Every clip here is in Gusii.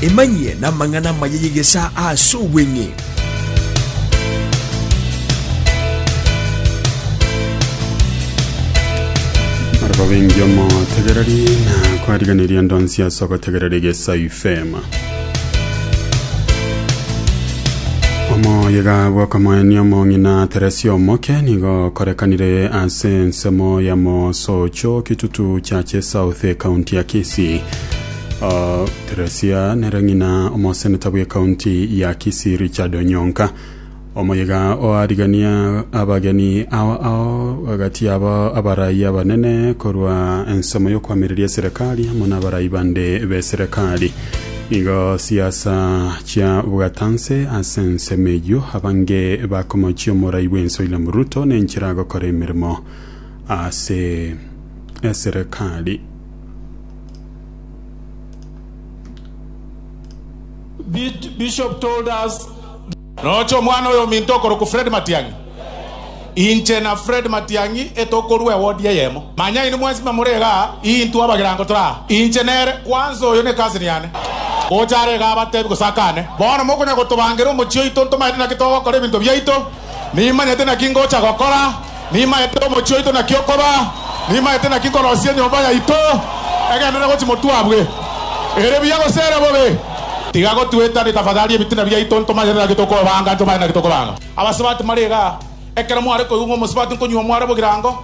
Emanyie namang'ana amaya y'egesaa ase obweng'e. Barabwo bengi omotegereri na kwariganirie ndonsi ase ogotegerera egesa ifema. Omoyega bw'okomoenia omong'ina Teresia omoke nigo okorekanire ase ensemo ya Mosocho kitutu chache South ekaunti ya Kisii. Uh, Teresia nere ng'ina omoseneta bw'ekaunti ya Kisii Richard Onyonka Omoyega oarigania abageni ao ao gati yabo abarai abanene korwa ensemo y'okwamireria eserekari amo n'abarai bande b'eserekari. Nigo siasa chia bwatanse ase ensemo eyio abange bakomochia omorai bw'ense William Ruto nenchera agokora emeremo ase eserekari. Bishop told us Noche omwana oyominto okorokwa Fred Matiang'i. Inche na Fred Matiang'i etokorua ewodi eyemo. Manya inwe mwensi mba more igaa, intwe abagirango tore aa. Inche nere, kwanza oyo ne cousin yane. Gocha are igaa abatebi gose akane, Bono mokonya gotobangera omochie oito ntomaete naki togokora ebinto biaito? Nimanyete naki ngocha gokora, nimanyete omochie oito naki okoba, nimanyete naki nkorosia enyomba yaito egenderere gochia motwabwe, ere buya gose ere bobe. Tiga gotuetania tafadhali ebitina biaito, ntomanyete naki tokobanga, ntomanye naki tokobanga. Abasubati mare igaa, ekero mware koigwa ng'a omosubati nkonyuo mware bogirango,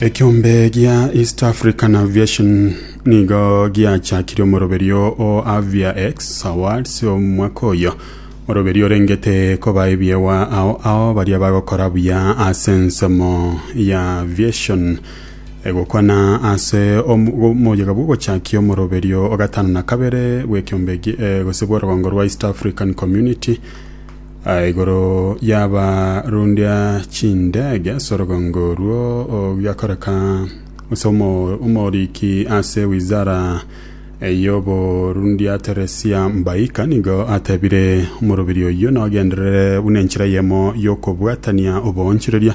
ekiombe gia east african aviation nigo giachakirie omoroberio o aviax awards omwaka oyo oroberio orengete koba ebiewa ao ao baria bagokora buya ase ensemo ya aviation egokwana ase omoyega bw'ogochakia omoroberio ogatano na kabere bw'ekiombe gi- eh, gose bw'orogongo rwa east african community Igoro yaba rundia chindege ase orogongo oruo ogiakoreka ase omo- omoriki ase wizara y'oborundia Teresia Mbaika nigo atebire omorobiri oyio nogenderere buna enchera eyemo y'okobwatania oboonchoreria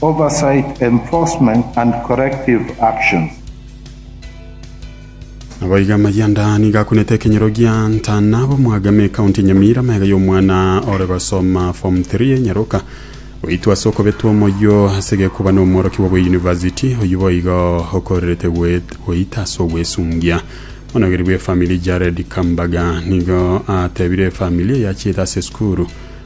Oversight, Enforcement and Corrective Actions. Naboigo amayia nda nigo akunete ekenyoro gia Ntana b'Omwagame ekaunti ya Nyamira amaiga y'omwana ore gosoma form 3 enyaroka goitwa ase okobetwa omoyio ase gekuba na omworokigwa bwe university oyio boigo okorerete goita ase ogwesungia. Omonogeri bwe family Jared Kambaga nigo atebire efamili eyachiete ase esukuru